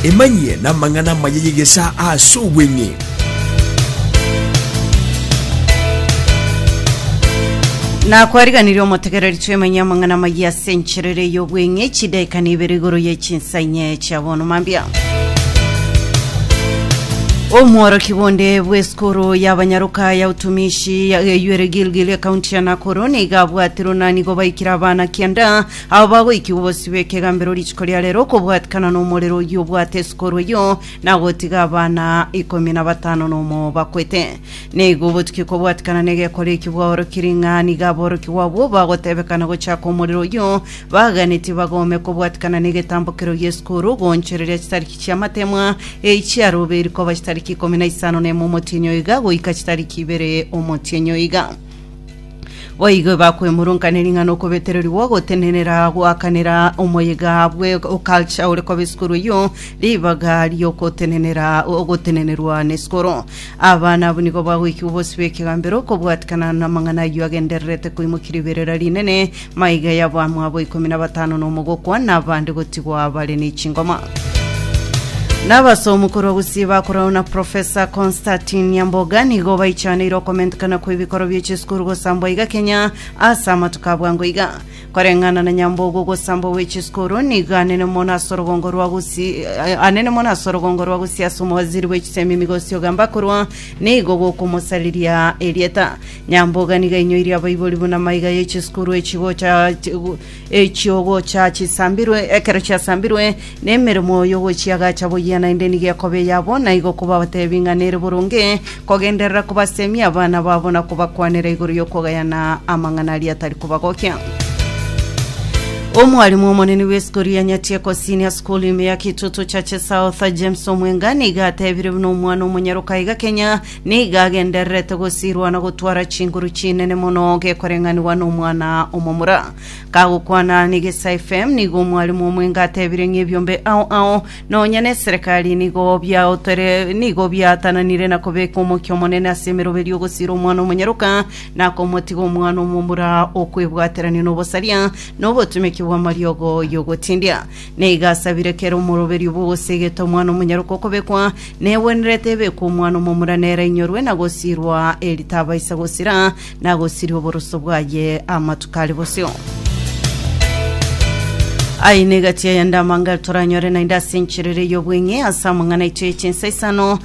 Emanyie namang'ana amaya y'egesaa ase obweng'e. na kwariganirie omotegereri twemanyie amang'ana amaya ase enchera ere y'obweng'e chidaika na ibere igoro ye chinsa inye chia bono mambia omworoki bonde bw'esukuru y'abanyaroka ya utumishi ya eyuere gilgil ekaunti ya nakuru nigo abwatirwe na nigo baikire abana kianda Aba bagoikigwa bosio bw'ekegambero rituko ria reero okobwatikana nomorero oyio obwate esukuru eyio, na gotiga abana ikomi na batano nomo bakwete. Na igo obotukia okobwatikana negekore ekio bwaorokiri ng'a nigo aborokigwa abwo bagotebekana gochaka omorero oyio, baganetie bagome kobwatikana negetambo kerio gi'esukuru, goonchoreria chitariki chi'amatemwa eyi chiaroberi koba chitariki ikomi na isano nemo omotienyi oiga goika chitariki ibere omotienyi oiga. Boigo bakwemurunkanera ring'ana okobetererigwa ogotenenera goakanera omoyega bwe oculture ore koba esukuru eyio ribaga riokotenenera ogotenenerwa na esukuru abana abwo nigo bagoikigwa bosibwa ekegambero okobwatikana namang'ana ayio agendererete koimokia riberera rinene Maiga yabo amo abo ikomi na batano nomo gokwa, na abande gotigwa bare ne chingoma. Nabasomu korwa Gusii bakorana na Profesa Constantine Nyamboga nigo baichaneire okomentekana kwe bikoro bie chisukuru gosambwa iga Kenya ase amatuko abwango iga. Koreng'ana na Nyamboga ogosambwa gwe chisukuru nigo anene mono ase orogongo rwa Gusii eh, anene mono ase orogongo rwa Gusii ase omowaziri bwe chisemi Migosi Ogamba korwa nigo gokomosariria erieta. Nyamboga nigo ainyoirie abaibori buna maiga ye chisukuru echi gocha echio gocha chisambirwe, ekero chiasambirwe, na emeremo y'ogochiagacha boyia naende nigo ekoba eyabo, na igo kobabatebie ng'a nere boronge kogenderera kobasemia abana babo na kobakwanera igoro y'okogayana amang'ana aria atari kobagokia. Omwalimu omonene bw'esukuru ya Nyatieko Senior School ime ya Kitutu Churches South, James Omwenga, nigo atebire buna omwana omonyaroka iga Kenya Nigo agendererete gosirwa na gotwara chinguru chinene mono gekoreng'anigwa nomwana omomura. Kagokwana n'Egesae FM, nigo omwalimu omwenge atebire ng'ebiombe ao ao, nonya neserekari nigo biaotore nigo biatananire na kobeka omokia omonene ase emeroberi ogosira omwana omonyaroka na komotiga omwana omomura okwebwaterania nobosaria nobotumeki bw'amariogo y'ogotindia. Na igo asabire kera omoroberio bw'ogosegeta omwana omonyaroke okobekwa, negwenerete ebekwe omwana omomura nere ainyorwe na gosirwa eri tabaisa gosira, na agosiria oboroso bwaye amatuko are bosio. Aye negati aya nde amangare toranyore naende ase encherere y'obweng'e ase amang'ana aito ye chinsa isano,